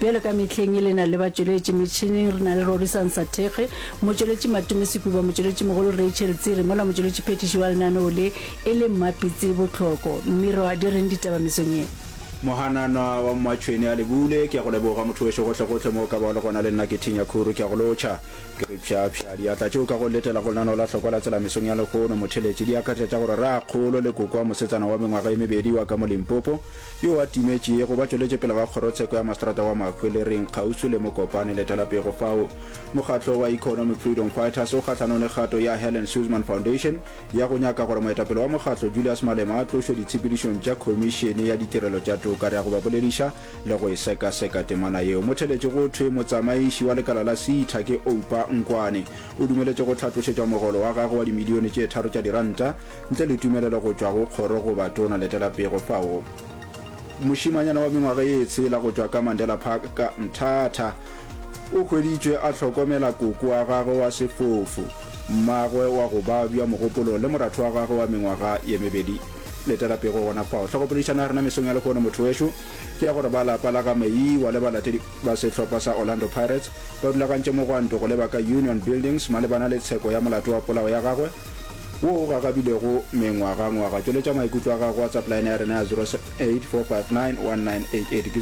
Bjalo ka mehleng e lena le batšweletši metšhineng re na le Rorisang Sathekge, motšweletši Matume Sekuba, motšweletši mogolo Rachel Tsiri mola motšweletši phethiši wa lenaneo le e le Mmapitsi Botlhoko. Mmirwa, di reng ditaba mesong ye? Mohananwa wa Mmatšhweni a lebule, ke a go leboga motho wešo gohlegohle mo o ka ba o le gona le nna ke Thinya Khuru ke a go lotšha ke re pšhapšha diatla tšeo ka go letela go lenaneo la Hlokwa la Tsela mesong ya lehono motheletše di akaretša gore Raakgolo Lekokwa mosetsana wa mengwaga e mebedi wa ka mo Limpopo yo a timetšego ba tšweletše pele ga Kgorotsheko ya Maseterata wa Mahwelereng kgauswi le Mokopane letelapego fao. Mokgatlo wa Economic Freedom Fighters o kgahlanong le kgato ya Helen Suzman Foundation ya go nyaka gore moetapele wa mokgatlo Julius Malema a tlošwe ditshepedišong tša Khomišene ya Ditirelo tša Toka re ya go ba bolediša le go e sekaseka temana yeo. Motheletši go thwe motsamaiši wa lekala la SEITA ke Oupa Nkwane. O dumeletše go hlatlošetšwa mogolo wa gagwe wa dimilione tše tharo tša diranta Ntle le tumelelo go tšwa go kgoro goba tona, letela pego fao. Mošimanyana wa mengwaga ye tshela go tšwa ka Mandela Park ka Mthatha o hweditšwe a hlokomela koko wa gagwe wa sefofu, mmagwe wa go babja mogopolong le moratho wa gagwe wa mengwaga ye mebedi. Letela pego gona fao. Tlhogopoledišano ya rena mesong ya lehono, motho wešo, ke ya gore ba lapa la ga Meyiwa le balatedi ba sehlopha sa Orlando Pirates ba rulagantše mogwanto go leba ka Union Buildings malebana le tsheko ya molato wa polao ya gagwe wo o gagabilego mengwagangwaga. Tšweletša maikutlo a gago. WhatsApp line ya rena ya 0784591988 ke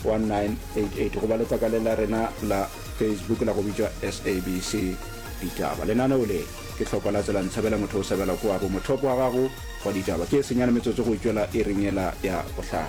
0784591988 goba letlakaleng la rena la Facebook la go bitšwa SABC Ditaba. Lenaneo le ke tlhoko la tsela ntshabela motho o sabela ko abo mothopo wa gago wa ditaba ke e senyane metsotso go itšwela e ringela ya bohlano.